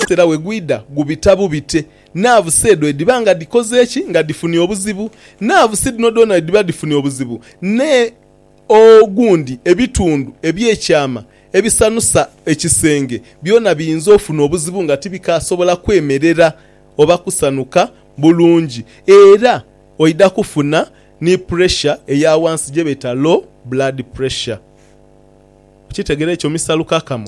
Era bwe gwidha gubita bubite. Naavusi edho edhiba nga dhikoze ki? Nga dhifunye obuzibu. Naavusi dhino dhoona bwe dhiba dhifunye obuzibu ne ogundi ebitundu eby'ekyama ebisanusa ekisenge byona biyinza ofuna obuzibu nga tibikaasobola kwemerera oba kusanuka bulungi. Era oidha kufuna ni puresha eya wansi gye beeta low blood pressure. Okyetegera ekyo Mister Lukakamo?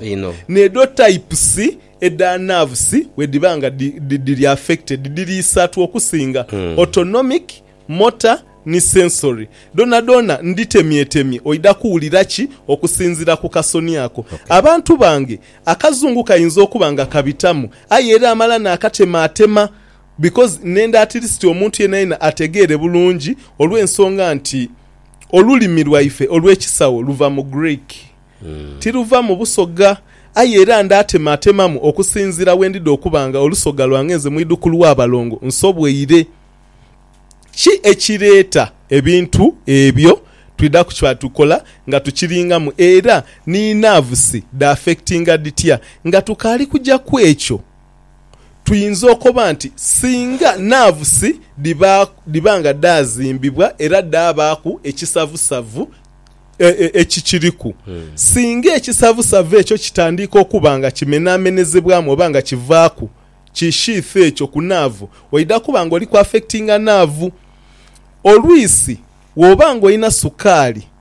Nedho types edha nerves bwedhiba nga dhiri affected dhiri isatu okusinga, autonomic, motor ni sensory. Dhonadhona ndhitemyetemye oidha kuwulira ki okusinziira ku kasoni ako? Abantu bange akazungu kayinza okuba nga kabitamu aye era amala naakatemaatema because nenda at least omuntu yenayena ategeere bulungi olw'ensonga nti, olulimi lwaife olw'ekisawo luva mu Greek. Tiruva mu Busoga. Aye era ndaatematemamu okusinziira bwe ndidha okuba nga olusoga lwange nze mwidhukulu wa balongo nsobweire. Ki ekireeta ebintu ebyo? Twidha ku kyatukola nga tukiringamu era ni naavusi dhaaffectinga dhitya nga tukaali kuja ku ekyo. Tuyinza okoba nti singa naavusi dhiba nga dhaazimbibwa era dhaabaaku ekisavusavu ekikiriku, singa ekisavusavu ekyo kitandiika okuba nga kimenhamenhezebwamu oba nga kivaaku ki sheath ekyo ku naavu, oidha kuba ng'oli ku affectinga naavu. Olwisi, bw'oba ng'olina sukaali.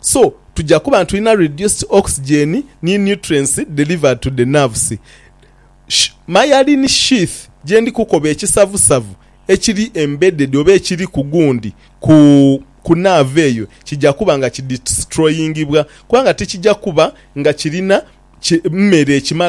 so tuja kuba nitulina reduced oxygen ni nutrients delivered to the nerves. Sh myelin sheath gyendi kukoba ekisavusavu ekiri embedded oba ekiri ku gundi ku ku nerve eyo kija kuba nga kidestroyingibwa kubanga tikija kuba nga kirina ki mmere ekimala